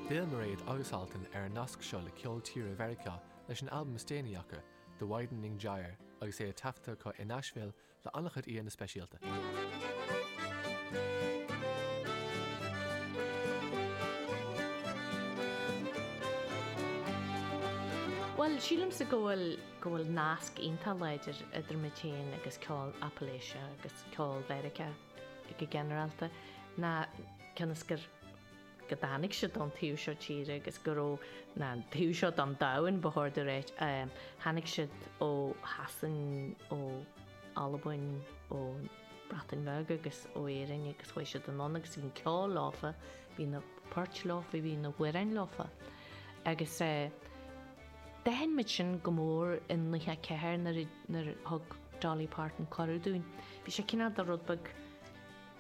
D'fhill Mairéad agus Altan ar an nasc seo le ceol tíre Mheiriceá leis an albam is déanaí acu, The Widening Gyre, agus é taifeadta acu i Nashville le an-chuid aíonna speisialta. Bhuel, sílimse go bhfuil, go bhfuil nasc iontach láidir idir muid fhéin agus ceol Appalachia agus ceol Mheiriceá. go ginearálta, ná cionn is gur go dtáinig siad do'n taobh seo tíre agus gur ón taobh seo do'n domhan, ba chóir domh a ráit, tháinig siad ó Shasain, ó Albain, ó Breatain Bheag agus ó Éirinn agus chuaigh siad anonn agus bhí an ceol leofa, bhí na poirt leofa, bhí na hamhráin leofa. Agus. D'aithin muid sin go mór i nócha a ceathair nuair a nuair a thug Dolly Parton cuireadh dúinn. Bhí sé cineál de rud beag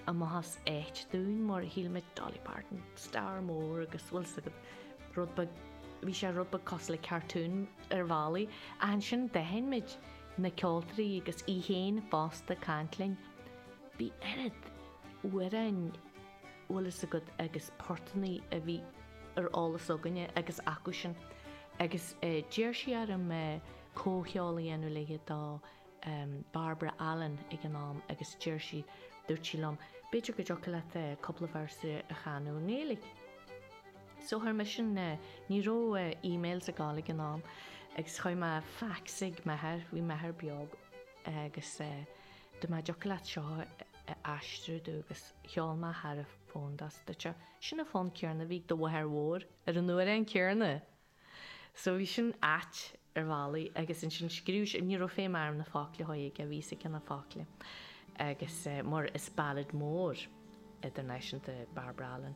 a maitheas ait dúinn mar shíl muid Dolly Parton, star mór agus bhfuil fhios agat rud beag, bhí sé rud beag cosúil le cartoon ar bhealaí. Ach ansin d'aithin muid na ceoltóirí agus í fhéin fosta ag caint linn. Bhí oiread amhráin. bhfuil fhios agat agus portanaí a bhí ar eolas againne agus acusan agus d'iarr sí orm comhcheol a dhéanamh léi do Barbara Allen ag an am agus d'iarr sí, dúirt sí liom, b'fhéidir go dtiocfadh leat cúpla véarsa a chanadh i nGaeilge. So chuir mise, ní raibh emails ag dul ag an am, agus chuir mé fax ag m'athair, bhí m'athair beo agus Dúirt mé an dtiocfadh leat seo a aistriú domh agus cheol mé thar an fón dó is dúirt sé. Sin an fonn céarna a bhí ag do mháthair mhór ar an amhrán céarna. So bhí sin ait ar bhealaí agus ansin scríobh sé, ní raibh feidhm orm na focla a chur aige, bhí fhios aige na focla agus mar is ballad mór idirnáisiúnta Barbara Allen.